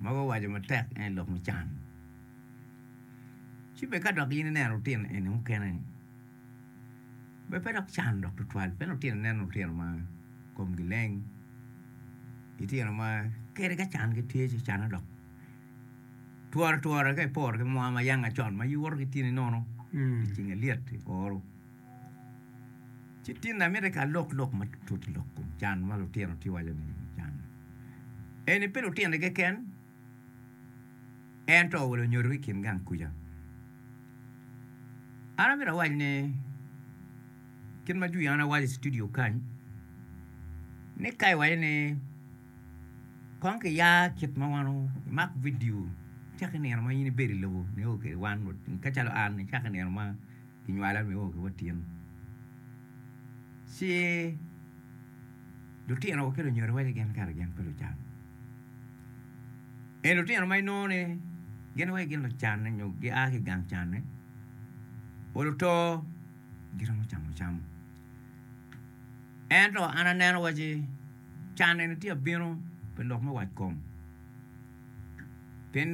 ma guwaco matek en aye lok mucan. Ci bed ka dok in ineno lutino eni mukene ni be pe dok can dok tutwal pien lutino ineno lutino ma komgi leng, litino ma kadi ka can gitye ci canne dok tworo twora ka iporo ki mwaa ma yanga con ma iwoto ki tyeni nono, iceng alyet ioro. Citine amiti ka alok lok matut lok kom can ma lutino tye waco ni can eni pe lutino keken ento wa lunyodo ki kin gang kuca. An amiti awac ni kit ma jwi an awaco i studio kany ni ka iwaco ni kong ki ya kit ma wan imak vidio caka i nino ma in ibedo i lobo nio kede wan ka calo an caka i nino ma Kinywala nio ki watin ci lutinowa ki lunyodowa aye gin kare gin pe lucan. Eni lutino ma inongo ni gin wai gin lucanne nyo gia ki i gang canne pol oto giromo camo cam ento an aneno waci can eni tye ka bino pi lok me wac kom pien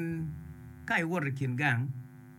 ka iwoto i kin gang.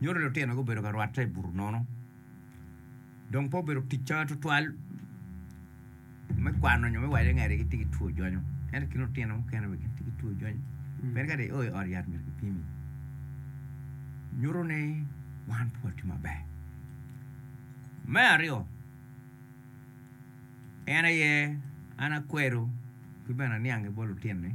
Nyuto lutino gubedo ka rwatte i buto nono dong pe obedo ticca tutwal me kwano nyo me waco ni kadi gitye ki two jwonyo. Ento ki lutino mukene bene gitye ki two jwonyo. Pien kadi io i ot yat myero kipimi. Nyuto ni wan pe watye maber. Me aryo, en aye an akwero ki bene aniang-ngi bot lutinni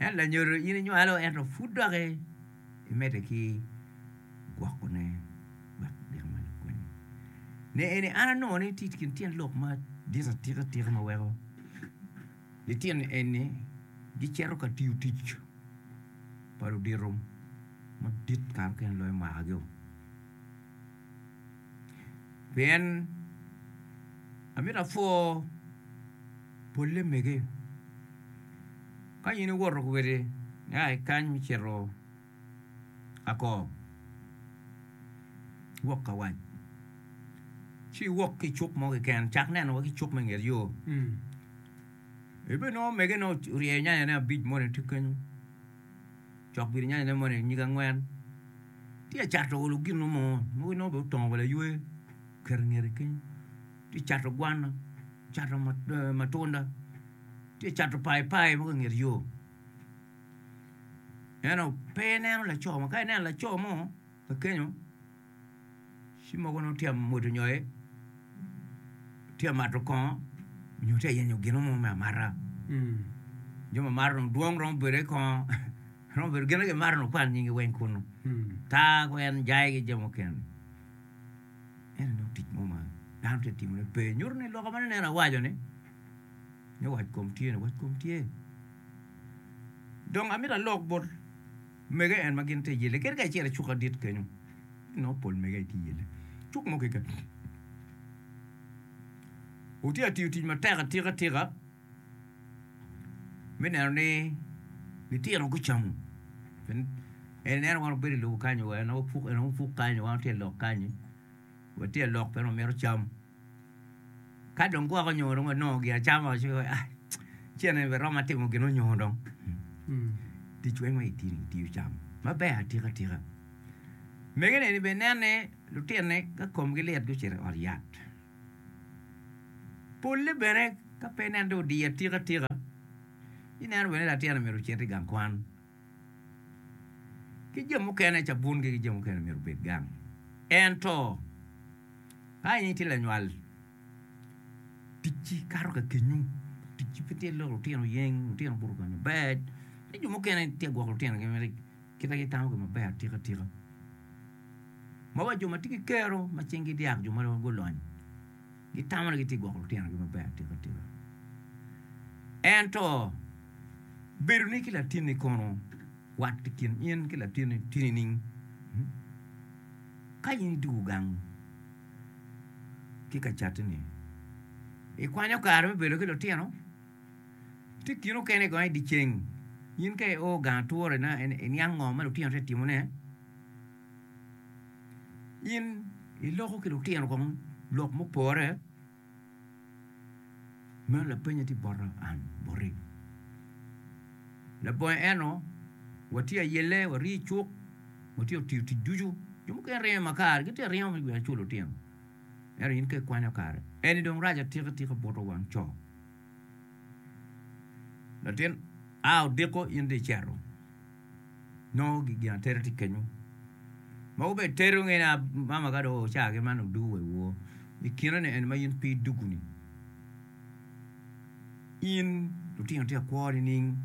En lanyodo in inywalo ento pud dok imedde ki gwokone wek obino ma lakwanyi. Ne eni an anongo ni tye i kin tyen lok madit atika atika ma weko litino eni gicito ka tiyo tic pa ludito madit kare mukene loyo mwakagiwa. Pien amito apwo. Polle mege. Ka in iwoto kwede nia i kany mi cito ako wok ka wac ci iwok ki icuk mo keken cak neno wa ki cuk me nget yo ibe nongo mege ne oryeyo nyanya ne abic moni tye kenyo cok gire nyanya ne moni nyige angwen tye cato olo gino mo mogo nongo bene otongo wa laywe oketo ingete kenyo tye cato gwana, cato matunda, tye cato paipai mogo i nget yo. Eno pe ineno laco mo, ka ineno laco mo kakenyo ci mogo nongo tye ka mwado nyoyo, tye ka mato kongo nyo tye ka yenyo gin mo me amata. Jo mamato dong dwong romo bedo i kongo, romo bedo gin ma kimato ni wukwal nyingi weng kunu, taa ki weny, jai ki jo mukene. En aye tic mo ma dano tye ka timone pe nyuto ni lok ma noneno awaco ni ni wac kom tye ni wac kom tye dong amito alok bot mege en ma gin tye iyele kadi kacel ki cuk adit kenyo inongo pol mege aye tye iyele cuk mo keken wutye ka tiyo tic matek atika tika me neno ni litino gucamo pien en ineno wano bedo i lobo kanyi wa inongo puk inongo puk kanyi wa tye i lok kanyi wa tye i lok pien wamito cam ka dong gwok onyo dong wanongo gia acama ci wai ai ceng ni romo atimo gin onyo dong tic weng ma itini itiyo cam maber atika tika mege ni bene inen ni lutini ka komgi lit gucito i ot yat Polle bene ka pe nen dong odiye atika atika, ineno bene ni latin omyero ocit i gang kwan. Ki jo mukene cabungi ki jo mukene omyero obed gang. Ento ka in itye lanywal, ticci kato ka kenyu, ticci pe tye loko lutino yeny, lutino obuto kany maber, ci jo mukene tye ka gwoko lutinogi mere kit ma gitamo kwede maber atika atika. Ma wa jo ma tye ki kero ma cingi dyak jo ma gulony gitamo ni gitye ka gwoko lutinogi maber atika. Ento bedoni ki latinni kono, wat i kin in ki latinni tye nining? Ka in idwogo gang ki ka catini, ikwanyo kare me bedo ki lutino? Tye kine mukene i dyeceng in ka io gang ature iniang ngo ma lutino tye ka timone? In iloko ki lutino kong lok mupore? Meno lapeny atye bota an boti. Labongo eno watye ayelle waryeo icuk watye otiyo tic ducu jo mukene ringo makar gitye ka ringo me gwel cul lutino ento in ka ikwanyo kare eni dong rac atika tika buto wang co. Latin a odiko in dong iceto. nongo gin atera tye kenyo mogo bene tedo ngene mama ka dong oca ki man odugo wa iwor ikine ni en ma in pe idugo ni in lutino tye ka kwo nining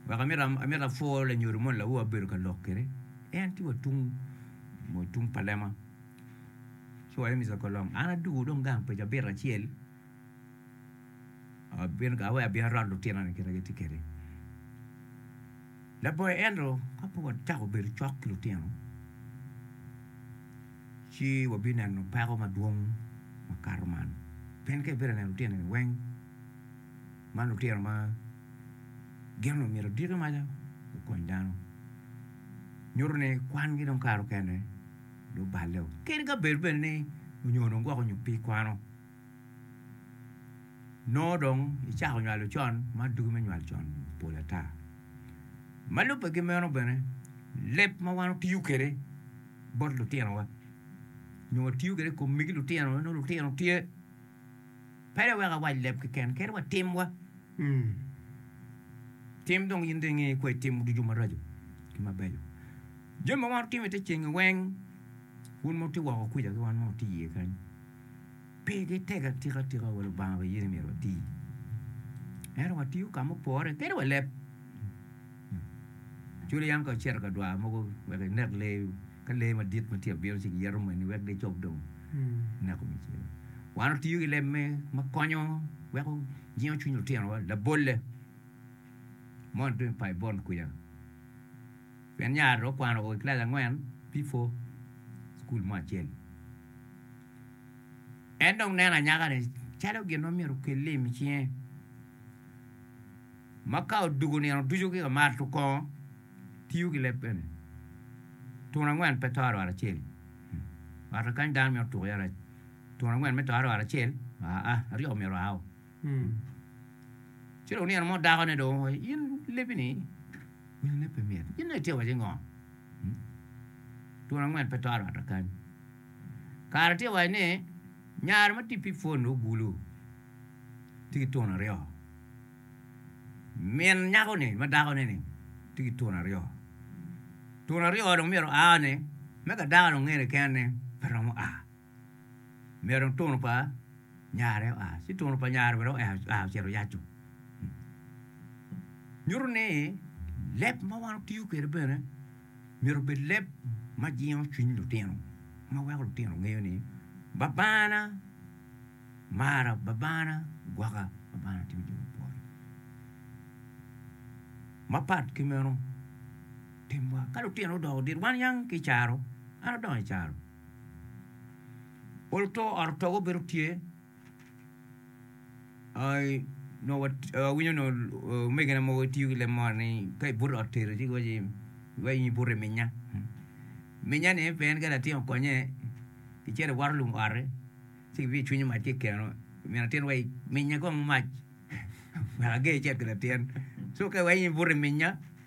wek amito apwor lanyodo moni lawowa ma abedo ka lok kwede en tye wa tung mo tung pa lema ci wa en mito ka long an adugo dong gang pa cabit acel Abino gawa wek abino arot lutino ni kit ma gitye kwede. Laboyo ento ka pud wacako obedo cok ki lutino ci wabineno peko madwong makato man pien ka ibedo ka neno lutino ni weng ma lutino ma gin omyero oditi maca gukony dano nyuto ni kwangi dong kare mukene dong oballe kadi ka bed bene ni onyo dong gwok onyo pe ikwano. Nongo dong icako nywalo con ma dugi me nywal con pol ata. Ma lubbe ki meno bene leb ma wan watiyo kwede bot lutinowa nyo watiyo kwede i kom megi lutino nongo lutino tye pele wek awac leb keken kadi wa timwa tim dong in dong ingeyo kwai tim ducu maraco ki mabeco. Jami ma wan watimo i te ceng-ngi weng un ma watye woko kwica ki wan ma watye iye kany Pe gitego atika atika wa Lubanga bene yene myero wati. Ento watiyo ka mupore kadi wa leb. Cwalo yam ka icito ka dwar mogo wek inek lee, ka lee madit ma tye ka bino ci giyeto moni wek gicob dong ineko me cen. Wan watiyo ki leb me ma konyo weko jingo cwiny lutinowa labolle moni tung i Baibon kwica. Pien nyare okwano o i kilaci angwen bifo cukul mo acel. En dong neno anyaka-ni calo gin ma myero okel lim i cinge, ma ka odwogo nino ducu ki ka mato kongo, tiyo ki leb bene. Tun angwen pe to arwar acel. Ot-ta kany dano mito tuko iye rac. Tun angwen me to arwar acel, aa, aryo myero oa o. Ci dong nino mo dakone dong owaco ni, In lebi-ni nyo leb pe mit, in dong itye ka waco ni ngo? Twon angwen pe to arwatta kany. Kare tye waco ni nyare ma tye pi pwon ogulu tye ki twon aryo, min nyako-ni ma dakone-ni tye ki twon aryo, twon aryo dong myero oa-ni me ka dako-ni onge keken-ni pe romo a. Myero otunu pa nyare oa, ci otunu pa nyare bene oa ocito oyaco. Nyuto ni leb ma wan watiyo kwede bene myero obed leb ma jingo cwiny lutino, ma weko lutino ngeyo ni Babana mara, Babana gwokka, Babana timo jo ma pwony. Mapat ki meno, timwa ka lutino odoko dit, wan yang ki i caro, an adongo i caro. Pol to ot otogo bedo tye ai nongo awinyo nongo omegina mogo gitiyo ki leb moni ni ka ibuto i ot tedo ci giwaci iwaci in ibuto i minya minyani pe en ka latin okonye icito iwato lum oti ci kibino icwinyo mac ki i keno min atin waci minya kong mac wek ager icit ki latin so ka iwaci in ibuto i minya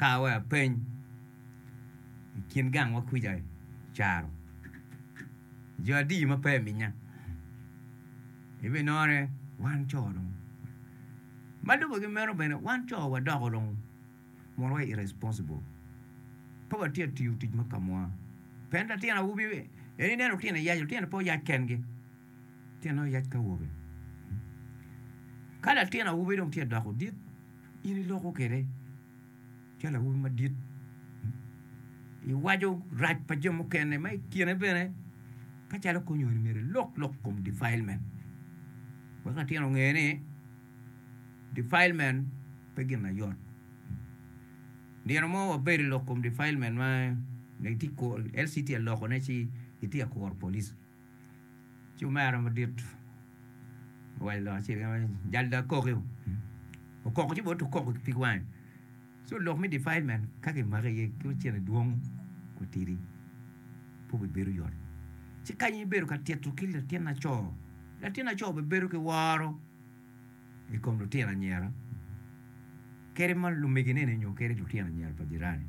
Kar wek apeny i kin gangwa kwija i caro jo adi ma pe iminya? Ibinongo ni wan co dong ma lubbe ki meno bene wan co wadoko dong mono wa irresponsible pe watye ka tiyo tic me kamwa. Pien latin awobi en ineno lutino iyac, lutino pe oyac kengi. Tyen oyac ka awobe. Ka latin awobi dong tye doko dit, in iloko kwede calo awobi madit. Iwaco rac pa jo mukene ma i kine bene ka calo kony eni myero ilok lok i kom defilement wek latin onge ni defilement pe gin ma yot. Nino mo wabedo i lok kom defilement ma LCT alokone ci gitye ka kuro police. Ci omera madit owaco lok acel kene ni, 'Jal dong akoki-u. Okoko ci bot okoko ki pig wange. So lok me defilement ka kimaki iye ki ocene dwong watidi pe obibedo yot. Ci kany ibedo ka tito ki latin laco, latin laco bibedo ki woro. i kom lutino anyira kadi ma lumegineni nyo kadi lutino anyira pa jirani.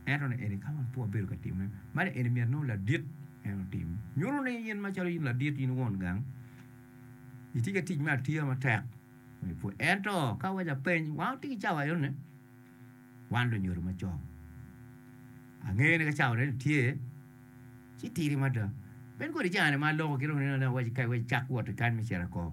Ento ni eni ka wan pe wabedo ka timme, ma ni eni myero nongo ladit en otim. Nyuto ni in macalo in ladit in won gang, itye ki tic me atiya matek me ipwony. Ento ka awaco apeny, wan watye ki cawa enoni, wan lunyodo macon. Angeyo ni ka cawa enoni tye, ci tidi mada. Bed kodi cani ma aloko ki dong nino ni awaco kany wek icak wot ki kany me cito i kom.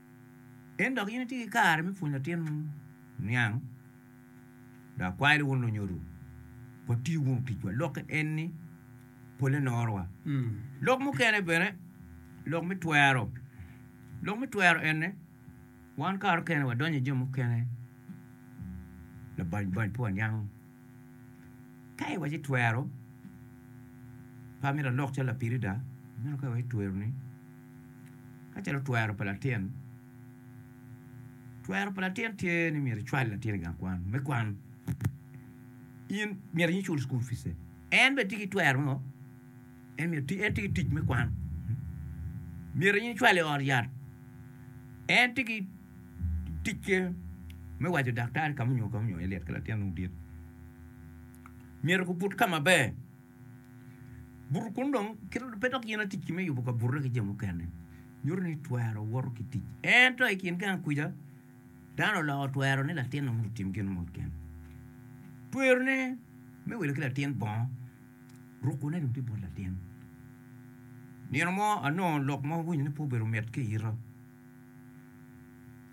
Pien dok in itye ki kare me pwonyo latin niang, dok akwayo ni wun lunyodo, wati wunu ticwa. Lokke en ni, Polle norowa. Lok mukene bene, lok me twero. Lok me twero ene, wan kare mukene wadonyo i jami mukene labany bany pe waniango. Ka iwaco ni twero pa me lalok calo lapirida, meno ka iwaco twero ni ka calo twero pa latin, twero pa latin tye ni myero icwal latin i gang kwan me kwan. In myero in icul cukul pice, en bene tye ki twero me ngo, en myero eti en tye ki tic me kwan, myero in icwale i ot yat, en tye ki Ticce me waco daktari ka munyo ka munyo Eliot ki latinne odit myero gubut ka maber. Buto kun dong pe dok gin atic ki me yubo kabute ki jo mukene. Nyuto ni twero woto ki tic. Ento i kin gang kwica, dano oloko twero ni latinne mondo otim gin mot kene. Twerone me wilo ki latin bongo, rukone dong tye bot latin. Nino mo anongo lok ma awinyo ni pe obedo mit ki ita.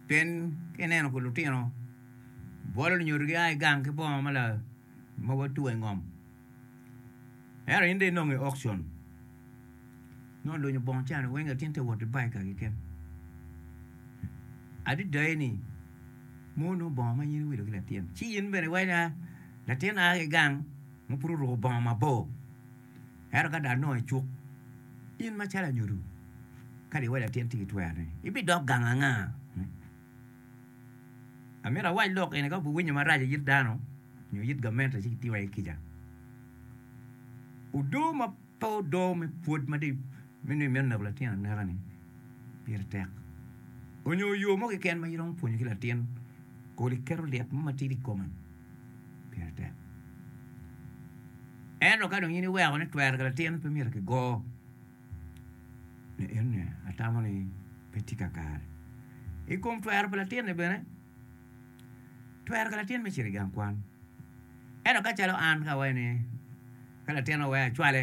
Pien ka ineno kun lutino bwolo lunyodo gia ki gang ki bongo ma watweyo i ngom ento in dong inongo i okcon nongo olunyo bongo ca ni weng latin tye ka wot ki baig kaki keken adada eni ma onongo bongo ma in iwilo ki latin ci in bene iwaco ni latin a ki gang ma pud oruko bongo mabor. Ento ka dong anongo icuk, in macalo anyodo, kadi iwaco latin tic ki twer ni, ibidok gang anga? Amito awac lok eni ka wubiwinyo marac i it dano nyo it gamente ci gitiwa iye kica. Odo ma pe odo me pwod ma dong me nongo imito neko latin aneka-ni pire tek. Onyo yo mo keken ma iromo pwonyo ki latin kodi keto lit mo matidi i kome. pire tek. Ento ka dong in iweko ni twero ki latin pe myero ki go ni enne atamo ni pe tye kakare. I kom twero pa latin ni bene, twero ki latin me cito i gang kwan ento ka calo an ka awaci ni ka latin aweyo acwale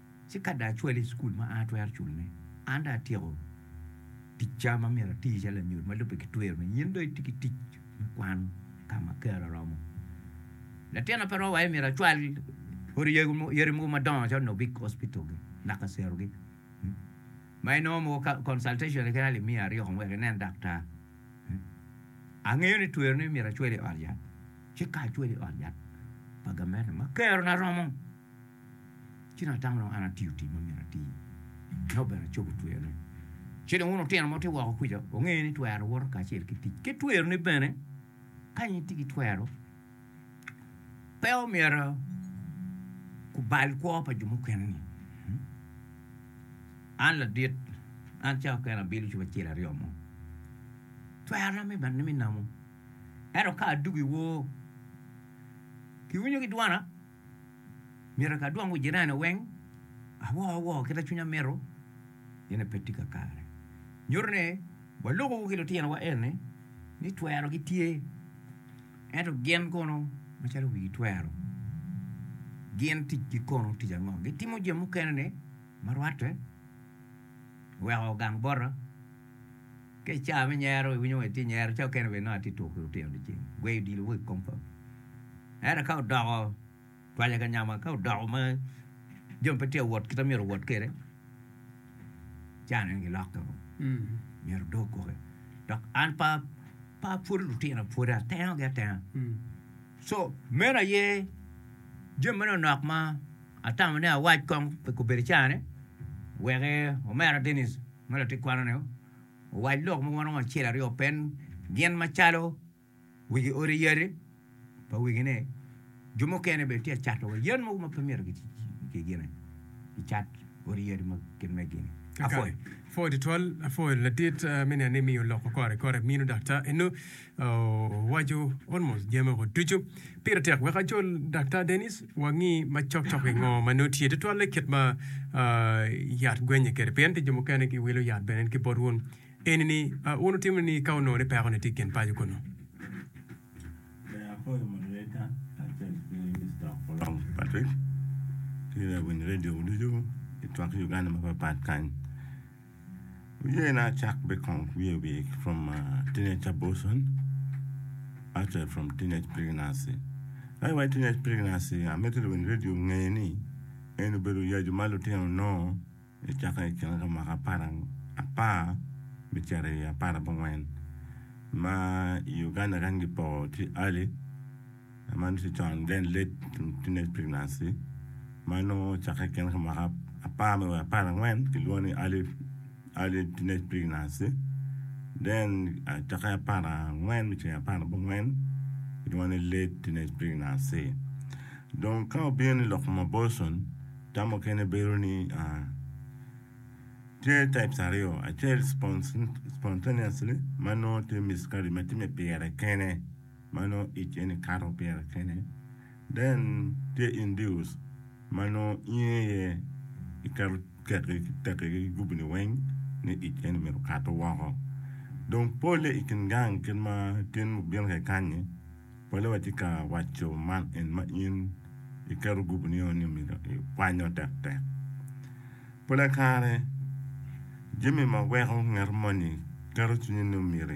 Ci ka dong acwale i cukul ma an atwero culone, an dong atyeko ticca ma myero ati calo lanyut ma lubbe ki twero ni in dong itye ki tic me kwan ka ma kare oromo. Latin ape romo aye myero acwal odi yadi mogo madongo calo nongo big hospital-gi naka cerogi ma inongo mogo ka consultation-ni kit alip miya aryeko wek inen daktar. Angeyo ni twero ni myero acwal i ot yat, ci ka acwalo i ot yat pa gamente ma kerona romo, Ci dong atamo dong an atiyo tic ma myero atir, ka obedo acobo twere. Ci dong wun lutino muti woko kuca, wunge ni twero woto kacel ki tic, ki tweroni bene. Kany itye ki twero, pe omyero kubal kwo pa jo mukene-ni. An ladit, an cawa kene abilo cobo acel aryo mo. Twerona me bene me namo, ento ka adwogo i wor, kiwinyo ki dwana. Myero ka adwongo jirani weng awor awor kit ma cwinya mito, ene pe tye kakare. Nyuto ni waloko ki litinowa eni ni twero gitye ento gin kono macalo wigi twero gin ticgi kono tic ango? Gitimo jami mukene-ni ma rwatte oweko gang bota. Ka i caa me nyero iwinyo wai tye nyero, caa okene bene nongo atye tuku ki lutino dyeceng, gweyo odilo mo i kom pawi. Ento ka odoko twalya ka nyama, ka odoko ma jami pe tye ka wot kit ma myero owot kwede, caa neno gilokke woko, myero odo kwoki. Dok an pe apwodo lutina pwoda, atenogi atena. Co, meno aye jami manok nok ma. Atamo ni awac kong pi kobedo icarani, wek omera Dennis ma latit kwano-ni owac lok mogo ma romo acel aryo open gin macalo wigi odi yati pa wigi-ni. Jo mukene bene tye ka cato wa yen mogo ma pe myero kigine kicat odi yati ma kit megi-ni. Apwoyo. Apwoyo tutwal, apwoyo latit me neni miyo lok ma kore kore mino dok ta eno Owaco, Almost jami woko ducu. Pire tek wek acol Daktar Dennis, wangi macok cok i ngo ma nongo tye tutwalle kit ma yat gwenye kwede. Pien pi jo mukene giwilo yat bene ki bot wun. Eni ni, wun wutimo ni ka wunongo ni peko-ni tye i kin paco kunu. Ber akoyo moderator kacel ki Mister Okolong Patrick ki lawiny radio ducu ki twak Uganda mapat pat kany. Wiye na cak be kong wiye wiye from uh, teenage abortion, actually from teenage pregnancy. Ai wai teenage pregnancy, amito lwin radio nge ni en obedo yacu ma lutino nongo icaka i kine ka mwaka apar apar me cito i apar abongwen. Ma i Uganda kany gipoko ki early Man tye con then late teenage pregnancy ma nongo ocakke i kine ka mwaka apar me wa apar angwen kilwongo ni early early teenage pregnancy then acakke apar angwen me cito i apar abongwen kilwongo ni late teenage pregnancy dong ka obino ni lok kom abortion tam mukene bedo ni tye types aryo acel spon spontaneously ma nongo tye miscarriage ma tye me pire kene. ma nongo ic eni kato pire kene. Then tye Induus ma nongo inge aye iketo kekki ki tekki ki gubini weng ni ic eni myero okato woko. Dong polle i kin gang kit ma tin mubino ka ikanni, polle watye ka waco man en ma in iketo gubinio ni myero ikwanyo tektek. Polle kare, jami ma weko ngat moni keto cwinye ni myero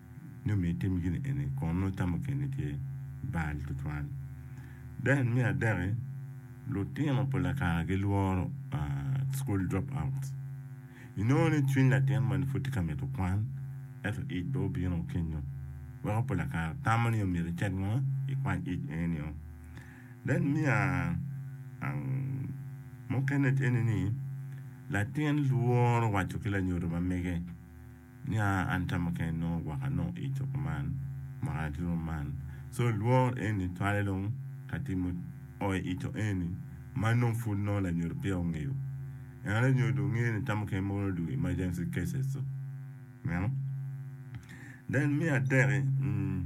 ni omiyo itimo gin eni kun nongo tam mukene tye bal tutwal. Then me adeki, lutino pa lakara gilworo school drop outs. Inongo ni cwiny latin moni pud tye ka mito kwan ento ic pe obino kenyo weko pa lakara tamo ni myero icit ngo ikwany ic enio. Then me mukene eni ni latin lworo waco ki lanyodo ma mege. Nia an tama kene nongo gwaka nongo i coko man mwaka ki romo man. So lwor eni twale dong ka timo oi i to eni ma nongo pud nongo lanyodo peya ongeyo. Ento lanyodo ngeyo ni tama kene mogo nongo dong emergency cases to. Ineno? Then me atek i, mm.